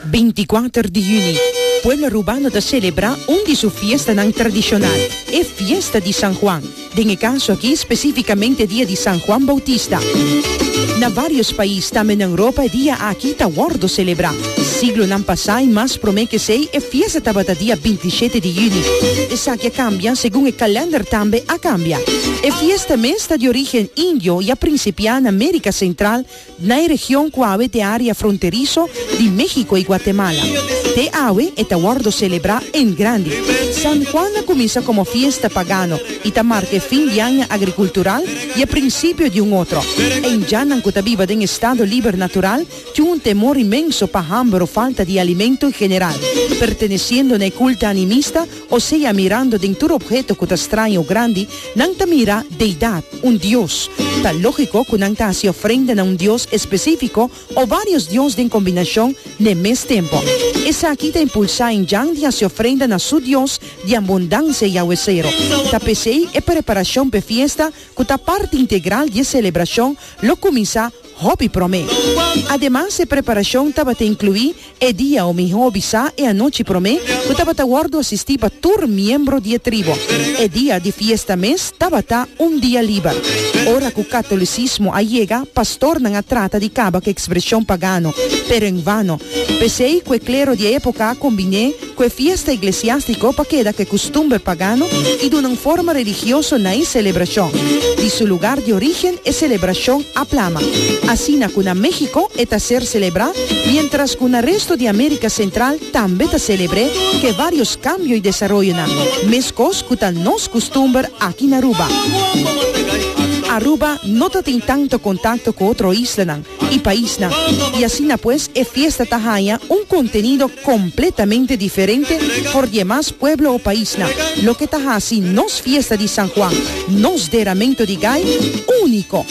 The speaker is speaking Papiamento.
Binti-kuater di hüni, pueblo Arubano ta selebrá un di su fiestanan tradishonal, e Fiesta di San Juan, den e kaso akí spesífikamente dia di San Juan Boutista. Na vários pais, tambe na Europa, e dia akí ta wòrdu selebrá. Siglonan pasá i mas promé kesei, e fiesta tabata dia bintishete di hüni. Esaki a kambia segun e kalènder tambe a kambia. E fiesta mes ta di orígen indio i a prinsipiá na Mérika Sentral na e region cu awe t'e area fronterizo di Mexico y Guatemala. Te awe e ta wordo celebra en grandi. San Juan a cuminsa como fiesta pagano y ta marca e fin di aña agricultural y e principio di un otro. E indjanan cu ta biba den estado liber natural tin un temor inmenso pa hamber o falta di alimento en general, perteneciendo na e culta animista, Osea, mirando den tur opheto ku ta straño o grandi, nan ta mira deidat, un dios. Ta lógiko ku nan ta hasi ofrenda na un dios espesífiko o vários dios den kombinashon n'e mes tempu. Esaki ta impulsá Injan di hasi ofrenda na su dios di Abundansia Yahweh Sero. Ta p'esei e preparashon p'e fiesta, ku ta parti integral di e selebrashon, lo kuminsá. Hopi promé. Ademas e preparashon tabata inkluí e dia o mihó bisá e anochi promé ku tabata wòrdu asistí pa tur miembro di e tribu. E dia di fiesta mes tabata un dia liber. Ora ku katolisismo a yega, pastornan a trata di kaba ku ekspreshon pagano, pero en vano. P'esei ku e klero di e époka a kombiné, ku e fiesta iglesiástiko pa keda ku e kustumber pagano i duna un forma religioso na e selebrashon. Di su lugar di orígen e selebrashon a plama, asina ku na México e ta ser selebrá, miéntras ku na resto di Amérika Sentral tambe ta selebr'é ku e vários kambio i desaroyonan, meskos ku ta nos kustumber aki na Aruba. Aruba no ta tin tantu kontakto ku otro islanan, y paisnan, y asina pues e fiesta ta haña un contenido completamente diferente for di e mas pueblo o paisnan, loke ta haci nos fiesta di San Juan, nos deramento di gai, unico.